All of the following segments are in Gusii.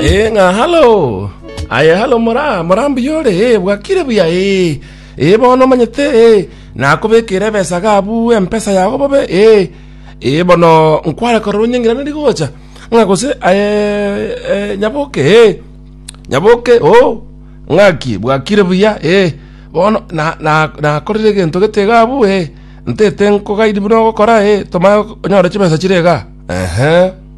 Eh, ng'a halo. Aye halo mora, mora mbuya ore, eh, bwakire buya, eh. Eh, bono omanyete, eh, nakobekire ebesa gabu empesa yago bobe, eh. Eh, bono nkware korora onyeng'irane rigocha. Ng'a gose, aye, eh, nyaboke, eh. Nyaboke, oh. Ng'aki, bwakire buya, eh. Bono, na, na, nakorire egento gete iga abu, eh. Ntete nkogaidi buna ogokora, eh. Tomanye onyore chibesa chire iga. Ehe.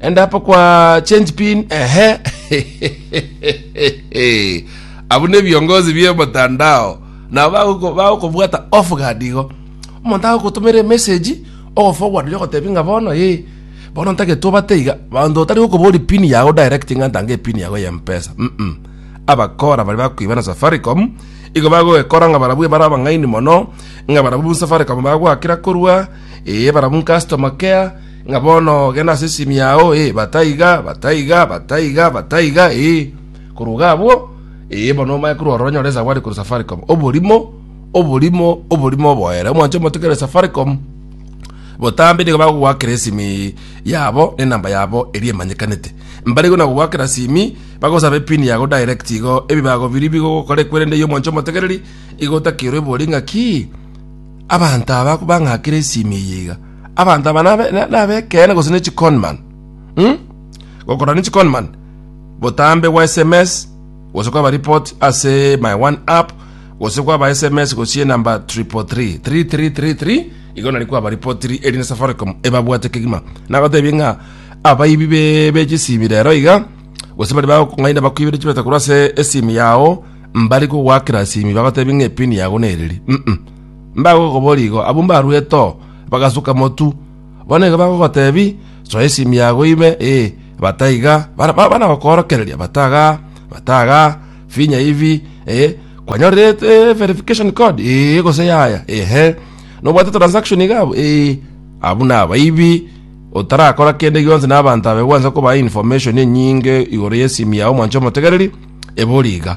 Enda apa kwa change pin ehe. Abwo ne biongozi bie motandao nabo bagoko- bagokobwata off guard igo omonto agogotomera emessage ogoforward yo ogotebi ng'a bono ee bono ntagete obate iga banto otari gokobori pin yago direct ng'a ntange epin yago ya mpesa mm abakora baria bakoiba na safaricom igo bagogekora ng'a barabwo bare abang'aini mono ng'a barabwo safaricom bagoakera korwa ee barabwo customer care Ng'a bono genda ase esimi yao, ee, bataiga, bataiga, bataiga, bataiga, ee. Korwa iga abwo, ee, bono omanye korwa ororo onyore esawari korwa Safaricom. Oborimo, oborimo, oborimo oboere. Omwancho omote kere Safaricom, botambe nigo bagogoakera esimi yabo na enamba yabo eria emanyekanete. Mbarigwe na gogoakera simi, bagosaba epin yago direct igo, ebibago biria bigogokora ekwerende eye omwancho omotegereri, igo otakerwe ebori ng'a ki? Abanto aba bang'akire esimi eye iga. Abanto aba nabe- na- nabekeene gose ne chiconman mm? gokorora ne chiconman botambe bwa sms gose kwaba report ase my one app gose kwaba sms gosie namba triple three three three three three igo nari kwaba ripotiri eri ne safaricom ebabwate kegima nagotebie ng'a abaibi be- be chisimi rero iga gose bari bagokong'aina bakwibire chibeta korwa ase esimi yao mbari kogwakera simi bagotebi ng'a epini yago nereri mm Mbagokoboria igo, abwo mbaruete oo, bagasuka motu. Bono nigo bagogotebi, Soa esimi yago ibe, ee, bata iga, bana gokoorokereria, bata iga, bata iga, finya hivi, ee, kwanyorire verification code? Ee, gose yaya, ehe, nobwate transaction iga abwo? Ee, abwo nabaibi, otarakora kende gionsi na abanto aba igo gwancha kobaa information enyinge igoro y'esimi yao mwancha omotegereri, ebori iga.